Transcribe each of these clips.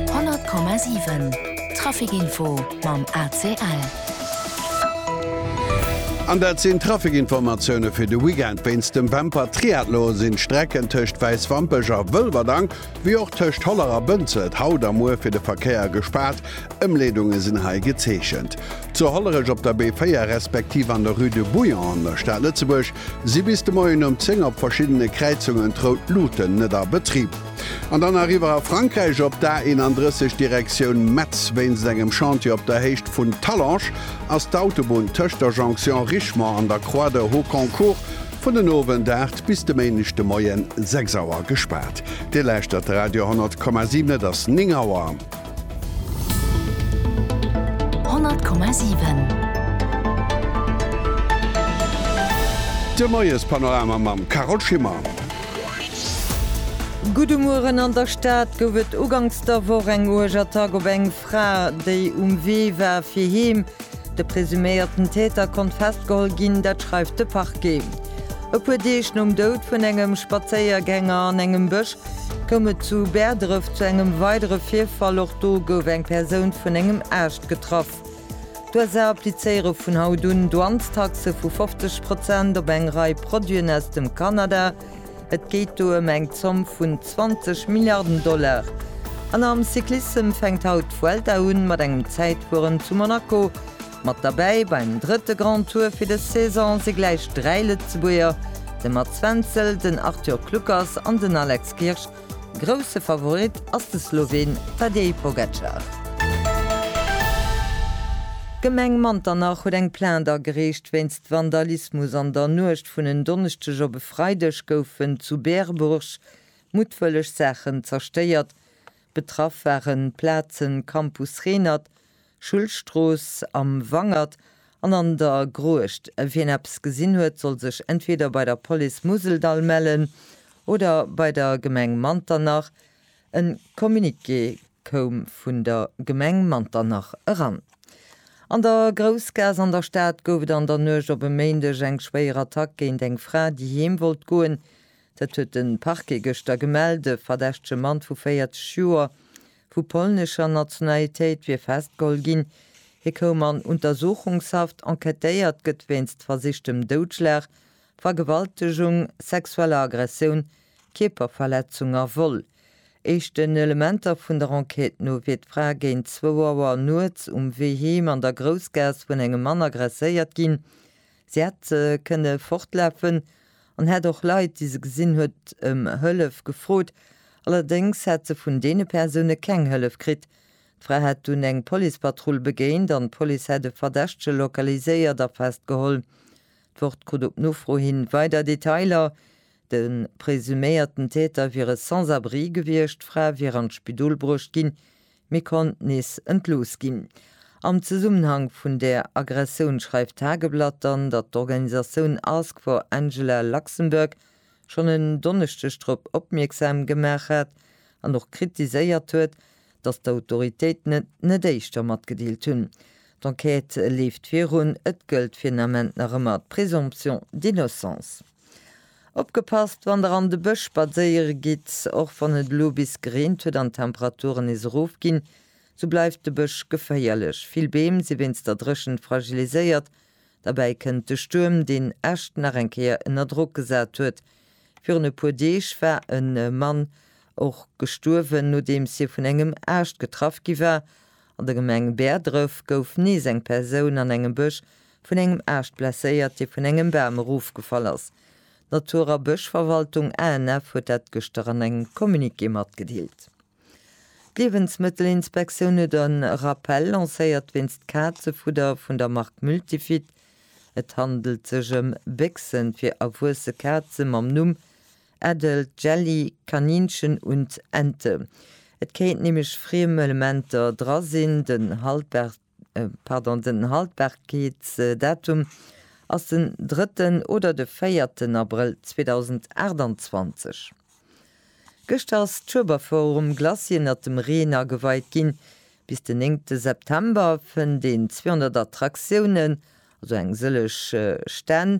100,7 Trafic Info mam ACL. An dat sinn d'Trafic-Informatioune fir de Weekend. Wéinst dem Wämper Triathlon sinn d'Strecken tëscht Wäiswampech a Wëlwerdang, wéi och tëscht Holler a Bënzelt haut a muer fir de Verkéier gespaart. Ëmleedunge sinn hei gezeechent. Zu Hollerech op der B4 respektiv an der Rue de Bouillon an der Stad Lëtzebuerg si bis de Moien um 10 op verschiddene Kräizungen d'Rout Luten net a Betrib. An dann eriwwer a Frankräich op d'A31 Direktioun Metz. Wéinst engem Chantier op der Héicht vun Talange ass d'Autobunn tëscht der Jonction Richemont an der Croix de Hauconcourt vun den Owend 8 bis de Méindeg de Moien 6 Auer gespaart. Dir lauschtert Radio 100,7, et ass 9 Auer. De Moiespanorama mam Carole Schimmer. Gudde Mueren, An der Stad gouf et uganks der Woch eng uerg Attack op eng Fra, déi um Wee war fir heem. De presuméierten Täter konnt festgeholl ginn, dat schreift de Parquet. E puer Deeg nom Doud vun engem Spazéiergänger an engem Bësch Koum et zu Bäerdref zu engem weidere Virfall, och do gouf eng Persoun vun engem Aascht getraff. D'USA applizéiere vun haut un Douanestaxe vu 50 Prozent op eng Rei Produiten aus dem Kanada. Et geet do ëm eng Zomm vun 20 Milliarden Dollar. An am Cyclissem fänkt haut d'Vuelta un, mat engem Zäitfueren zu Monaco. Mat derbäi beim drëtte Grand Tour fir des Saison si gläich dräi Lëtzebuerger, de Mats Wenzel, den Arthur Kluckers an den Alex Kirsch. Grousse Favorit ass de Sloween Tadej Pogacar. D'Gemeng Manternach huet eng Plainte agereecht wéinst Vandalismus. An der Nuecht vun en Donneschdeg op e Freideg goufen zu Berbourg muttwëlleg Saachen zerstéiert. Betraff waren d'Plazen Campus Renert, Schullstrooss, am Wangert an an der Gruecht. Wien eppes gesinn huet, soll sech entweder bei der Police Museldall mellen oder bei der Gemeng Manternach. E Communiqué koum vun der Gemeng Manternach eran. An der Groussgaass an der Stad gouf et an der Nuecht op e Méindeg eng schwéier Attack géint eng Fra, déi heem wollt goen. Dat huet de Parquet gëschter gemellt. E verdächtege Mann vu 40 Joer vu polnescher Nationalitéit wier festgeholl ginn. Hie koum an Untersuchungshaft. Enquêtéiert gëtt wéinst versichtem Doudschlag, Vergewaltegung, sexueller Aggressioun, Kierperverletzung a Vol. Éischten Elementer vun der Enquête no wier d'Fra géint zwou Auer nuets um Wee heem an der Groussgaass vun engem Mann aggresséiert ginn. Si hätt kënne fortlafen an hätt och Leit, déi se gesinn huet, ëm Hëllef gefrot. Allerdéngs hätt se vun deene Persoune keng Hëllef kritt. D'Fra hätt dunn eng Policepatrull begéint an d'Police hätt e Verdächtege lokaliséiert a festgeholl. D'Wort krut op Nofro hi weider Detailer, De presuméierten Täter wier e Sans-abri gewiescht, d'Fra wier an d'Spidol bruecht ginn, Mir konnt nees entlooss ginn. Am Zesummenhang vun där Aggressioun schreift d'Tageblatt dann, datt d'Organisatioun Ask for Angela Luxembourg schonn en Donneschdeg drop opmierksam gemaach hat an och kritiséiert huet, datt d'Autoritéiten et net éischter matgedeelt hunn. D'Enquête leeft virun, et gëllt fir den Ament nach ëmmer d'Présomption d'innocence. Opgepasst wann der an de Bësch spadséiere gitt, Och wann et elo bis gereent huet an d'Temperaturen nees erof ginn, sou bleift de Bësch geféierlech. Vill Beem si wéinst der Dréchent fragiliséiert. Derbäi kënnt de Stuerm, deen Äscht nach eng Kéier ënner Drock gesat huet. Virun e puer Deeg war e Mann och gestuerwen, nodeems hie vun engem Aascht getraff gi war. An der Gemeng Bäerdref gouf nees eng Persoun an engem Bësch Vun engem Aascht blesséiert, dee vun engem Bam erofgefall ass. D'Natur a Bëschverwaltung, ANF, huet dat gëschter an engem Communiqué matgedeelt. D'Liewensmëttelinspektioun huet en Rappell lancéiert wéinst Kazefudder vun der Mark Multifit. Et handelt sech ëm Béchsen fir erwuesse Kaze mam Numm Adult Jelly, Kaninchen und Ente. Et kéinten nämlech friem Elementer dra sinn. Den Haltbar. pardon, den Haltbarkeetsdatum ass den drëtten oder de véierten Abrëll 2028. Gëschter ass d'Schueberforum Glacis ënnert dem Reen ageweit ginn. Bis den néngte September fënnt een 200 Attraktiounen, also eng sëllech Stänn,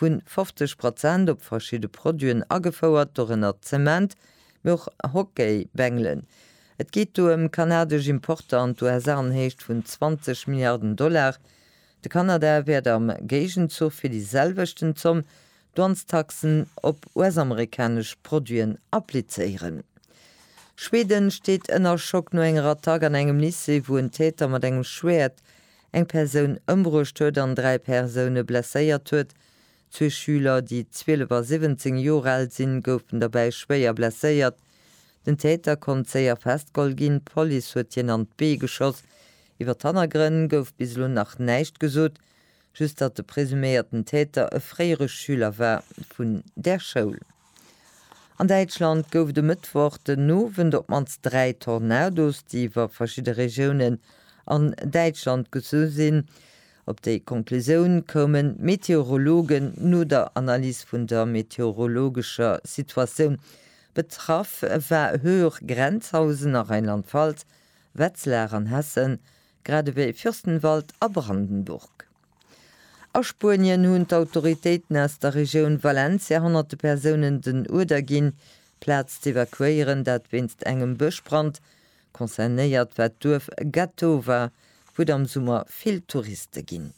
vun 50 Prozent op verschidde Produiten agefouert, dorënner Zement, mee och Hockeybängelen. Et geet do ëm kanadesch Importer an d'USA an Héicht vun 20 Milliarden Dollar. De Kanada wäert am Géigenzuch fir déi selwechten Zomm Douanestaxen op US-amerikanesch Produiten applizéieren. Schweden steet ënner Schock no enger Attack an engem Lycée, wou en Täter mat engem Schwäert eng Persoun ëmbruecht huet an dräi Persoune blesséiert huet. Zwee Schüler, déi 12 a 17 Joer al sinn, goufen derbäi schwéier blesséiert. Den Täter konnt séier festgeholl ginn, d'Police huet hien an d'Bee geschoss. Iwwer d'Hannergrënn gouf bis elo nach näischt gesot, just datt de presuméierten Täter e fréiere Schüler war vun där Schoul. An Däitschland gouf et e Mëttwoch den Owend op d'mannst dräi Tornados, déi iwwer verschidde Regiounen an Däitschland gezu sinn. Op déi Conclusioun koumen d'Meteorologen no der Analys vun der meteorologescher Situatioun. Betraff war Höhr Grenzhausen a Rheinland-Pfalz, Wetzlar an Hessen, grad ewéi Fürstenwald a Brandenburg. A Spuenien hunn d'Autoritéiten aus der Regioun Valencia honnerte Persounen den Uerder ginn, d'Plaz z'evakuéieren, dat wéinst engem Bëschbrand. Concernéiert war d'Duerf Gatowa, wou et am Summer vill Touriste ginn.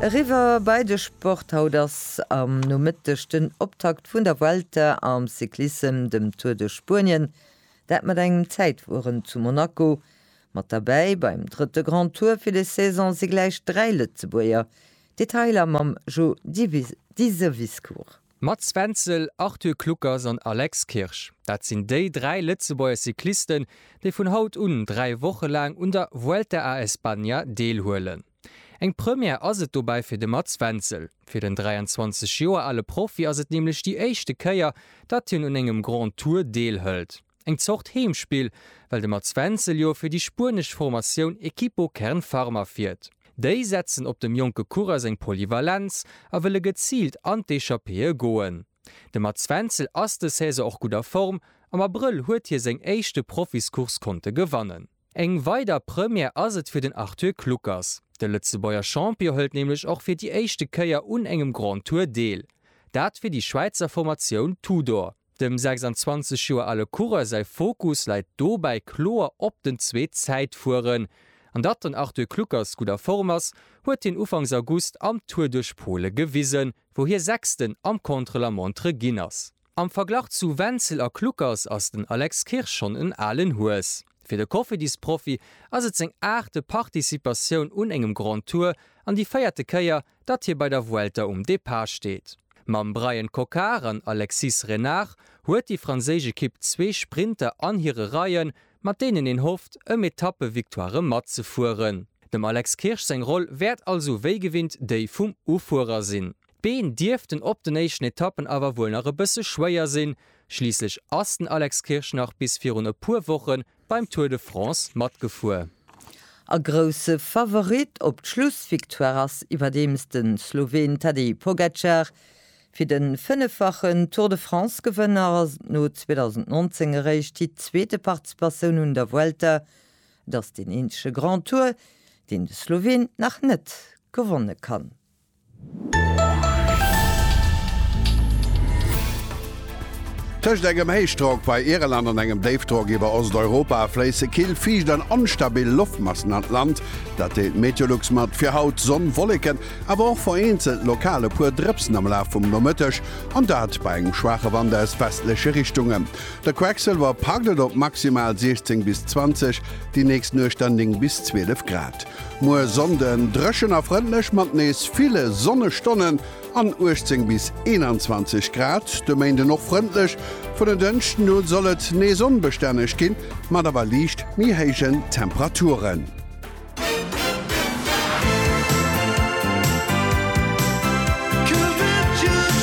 Eriwwer bei de Sport, Haut ass am Nomëtteg den Optakt vun der Vuelta am Cyclissem, dem Tour de Spuenien, dat mat engem Zäitfueren zu Monaco. Mat derbäi beim drëtte Grand Tour fir des Saison si gläich dräi Lëtzebuerger, Detailer mam Jo Diseviscourt. Mats Wenzel, Arthur Kluckers an Alex Kirsch, dat sinn déi dräi Lëtzebuerger Cyclisten, déi vun haut un dräi Woche laang un der Vuelta a España deelhuelen. Eng Première ass et dobäi fir de Mats Wenzel. Fir den 23 Joer ale Profi ass et nämlech déi éischte Kéier, datt hien un engem Grand Tour deelhëlt. Eng Zort Heemspill, well de Mats Wenzel jo fir déi spuenesch Formatioun Equipo Kern Pharma fiert. Déi setzen op dem jonke Coureur seng Polyvalenz a wëlle geziilt an d'Echappéeë goen. De Mats Wenzel ass des Saison och gutt a Form, am Abrëll huet hie seng éischte Profiscourse konnte gewannen. Eng weider Première ass et fir den Arthur Kluckers. De Lëtzebuerger Champion hëlt nämlech och fir déi éischte Kéier un engem Grand Tour deel. Dat fir déi Schwäizer Formatioun Tudor. Dem 26 Joer ale Coureur säi Fokus läit dobäi kloer op den zwee Zäitfueren. An datt den Arthur Kluckers gutt a Form ass, huet hien Ufanks August am Tour duerch Pole gewisen, wou hie Sechsten am Contre-la-montre ginn ass. Am Verglach zu Wenzel a Kluckers ass den Alex Kirsch schonn en alen Hues. Fir de Koffiddisprofi ass et seng aachte Participatioun un engem Grand Tour an déi véierte Kéier, datt hie bei der Vuelta um Depart steet. Mam Bryan Coquard an Alexis Renard huet déi franséisch Ekipp zwee Sprinter an hire Reien, mat deenen een hofft, ëm Etappe-Victoirë matzefueren. Dem Alex Kirsch seng Roll wäert also wéi gewinnt déi vum Ufuerer sinn. D'Been dierften op den éischten Etappen awer wuel nach e bësse schwéier sinn, schliisslech ass den Alex Kirsch nach bis virun e puer Woche beim Tour de France matgefuer. A grousse Favorit op d'Schlussvictoire ass iwwerdeems de Sloween Tadej Pogacar. Fir de fënneffachen Tour de France-Gewënner ass et no 2019 eréischt déi zweete Participatioun un der Vuelta. Et ass deen eenzege Grand Tour, deen de Sloween nach net gewonne kann. Tëscht engem Héichdrock bei Irland an engem Déifdrock iwwer Osteuropa fléisse kill, fiicht an onstabil Loftmassen an d'Land. Dat deelt d'Meteolux mat. Fir haut, Sonn, Wolleken, awer och vereenzelt lokal e puer Drëpsen am Laf vum Nomëtteg, an dat bei engem schwaache Wand aus westleche Richtungen. De Quecksilwer packt et op maximal 16 bis 20, déi nächst Nuecht dann 9 bis 12 Grad. Muer Sonnden drëchen a frëndlech mat nees ville Sonnestonnen an 18 bis 21 Grad. De Méinden och frëndlech, vun den Dënschden u soll et nees onbestänneg ginn, mat awer liicht méi héijen Temperaturen.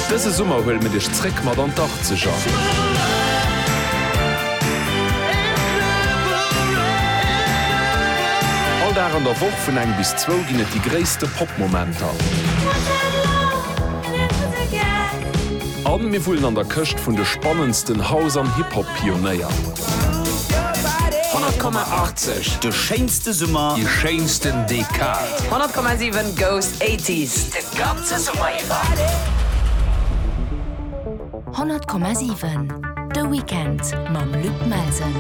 Dëse Summer huele mir dech zréck mat an d'Achtzeger! All Dag an der Woch vun eng bis zwou ginn et déi gréisste Pop-Momenter. A mir wullen an der Këscht vun de spannendsten House an Hip-Hop-Pionéier. 100,80, de schéinste Summer, déi schéinsten Dekad. 100,7 goes 80s de ganze Summer iwwer. 100,7 De Weekend mam Luc Melsen.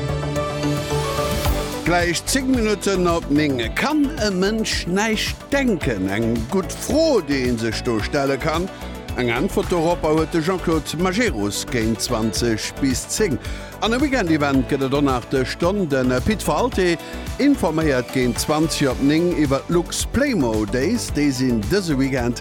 Gläich 10 Minutten op 9 Kann e Mënsch näischt denken? Eng gutt Fro, déi ee sech do stelle kann. Eng Äntwert doropper huet de Jean-Claude Majerus géint 20 bis 10. An e Weekendevent gëtt et och nach dës Stonn. De Pit Walté informéiert géint 20 op 9 iwwer d'Lux Playmo Days. Déi sinn dëse Weekend.